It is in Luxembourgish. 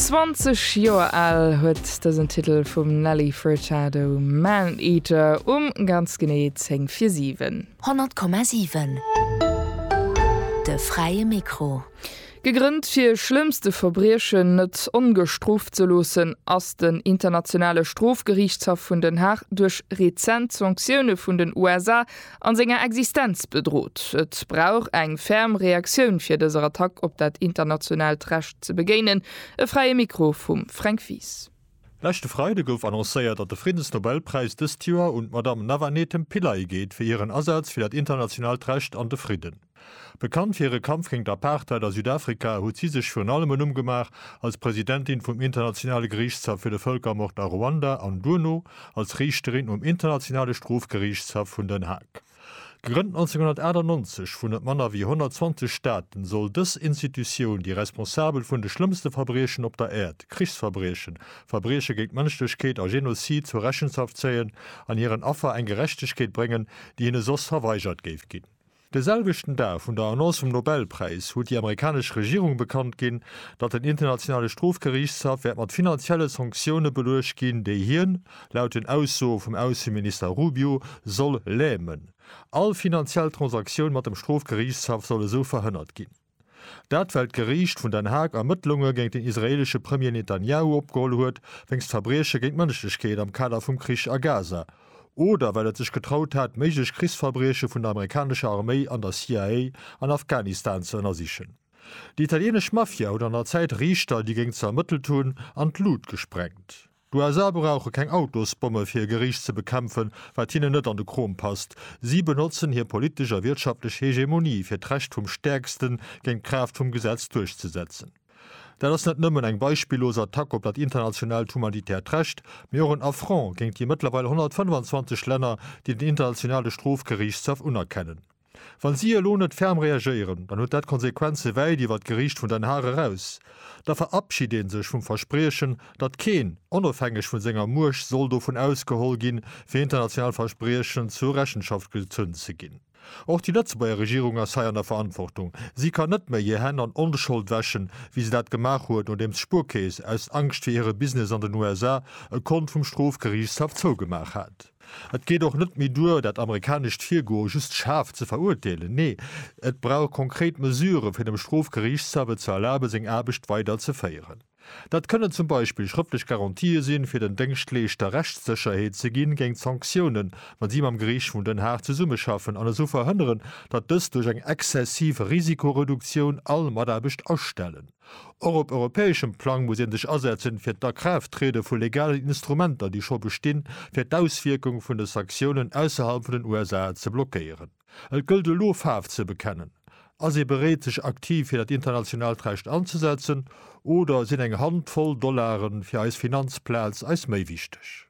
20 Joer al huet dësen Titel vum Nelly Furtado Man Eater um ganz genee 10 vir 7. 100,7 De fräie Mikro. Gegrënnt fir schlëmmste Verbriechen net ongestrooft ze loossen, ass den Internationale Strofgeriichtshaff vun Den Haag duerch rezent Sanktioune vun den USA a senger Existenz bedrot. Et brauch eng ferm Reaktioun fir dëser Attack op dat internationaalt Recht ze begéinen. E Fräie Mikro vum Fränk Wies. Leschte Freide gouf annoncéiert, datt de Friddensnobelpräis dëst Joer un d'Madame Navanethem Pillay geet fir hiren Asaz fir dat internationaalt Recht an de Fridden. Bekannt fir hire Kampf géint d'Apartheid a Südafrika, huet si sech virun allem e Numm gemaach als Presidentin vum Internationale Geriichtshaff fir de Vëlkermord a Ruanda an duerno als Riichterin um Internationale Strofgeriichtshaff vun Den Haag. Gegrënnt 1998 vun net manner wéi 120 Staaten, soll dës Institutioun déi Responsabel vun de schlëmmste Verbriechen op der Äerd, Krichsverbriechen, Verbrieche géint d'Mënschlechkeet a Genozid zur Rechenschaft zéien an hiren Affer eng Gerechtegkeet bréngen, déi hinne soss verweigert géif ginn. De selwechten Dag vun der Annonce vum Nobelpräis huet déi amerikanesch Regierung bekannt ginn, datt den Internationale Strofgeriichtshaff wäert mat finanzielle Sanktioune beluecht ginn, déi hien, laut den Aussoe vum Ausseminister Rubio, soll lämen. All finanziell Transaktioun mat dem Strofgeriichtshaff soll esou verhënnert ginn. Dat well d'Geriicht vun Den Haag Ermëttlunge géint den israeelesche Premier Netanjahu opgeholl huet wéinst Verbrieche géint d'Mënschlechkeet am Kader vum Krich a Gaza, oder well et sech getraut hat méiglech Krichsverbrieche vun der amerikanescher Arméi an der CIA an Afghanistan ze ënnersichen. Déi italienesch Mafia huet an der Zäit Riichter, déi géing ze ermëttelt hunn, an d'Lut gesprengt. D'USA brauche keng Autosbomme fir hir Geriicht ze bekämpfen, wat hinnen net an de Krom passt. Si benotzen hir politesch a wirtschaftlech Hegemonie fir d'Recht vum Stäerksten, géint d'Kraaft vum Gesetz duerchzesetzen. Dat ass net nëmmen eng beispillos Attack op dat internationaalt humanitäert Recht, mee och en Affront géint déi mëttlerweil 125 Länner, déi den Internationale Strofgeriichtshaff unerkennen. Wa si elo net ferm reagéieren, dann huet dat Konsequenze wäit iwwer d'Geriicht vun Den Haag eraus. Da verabschid een sech vum Verspriechen, datt keen, onofhängeg vun senger Muecht, soll dovun ausgeholl ginn, fir international Verspriechen zur Rechenschaft gezunn ze ginn. Och déi Lëtzebuerger Regierung ass hei an der Verantwortung. Si kann net méi hir Hänn an Onschold wäschen, wéi se dat gemaach huet, nodeems d'Spuerkeess, aus Angscht fir hire Business an den USA, e Kont vum Strofgeriichtshaff zougemaach hat. Et geet och net méi duer, dat amerikanescht Virgoe just schaarf ze verurteelen. Nee, et brauch konkret Mesuren, fir dem Strofgeriichtshaff et ze erlaben, seng Aarbecht weider ze féieren. Dat kënnen zum Beispill schrëftlech Garantië sinn, fir den Déngschtleeschter Rechtssécherheet ze ginn géint Sanktiounen, wa si mam Geriicht vun Den Haag zesummeschaffen, an esou verhënneren, datt dës duerch eng exzessiv Risikoreduktioun all Mataarbecht astellen. Och op europäeschem Plang muss ee sech asetzen, fir d'Akraafttriede vu legalen Instrumenter, déi scho bestinn, fir d'Auswierkung vun de Sanktiounen ausserhalb vun den USA ze blockéieren. Et gëllt elo, Faarf ze bekennen. Ass ee bereet, sech aktiv fir dat internationaalt Recht anzesetzen, oder sinn eng Hand voll Dollaren fir eis Finanzplaz eis méi wichteg?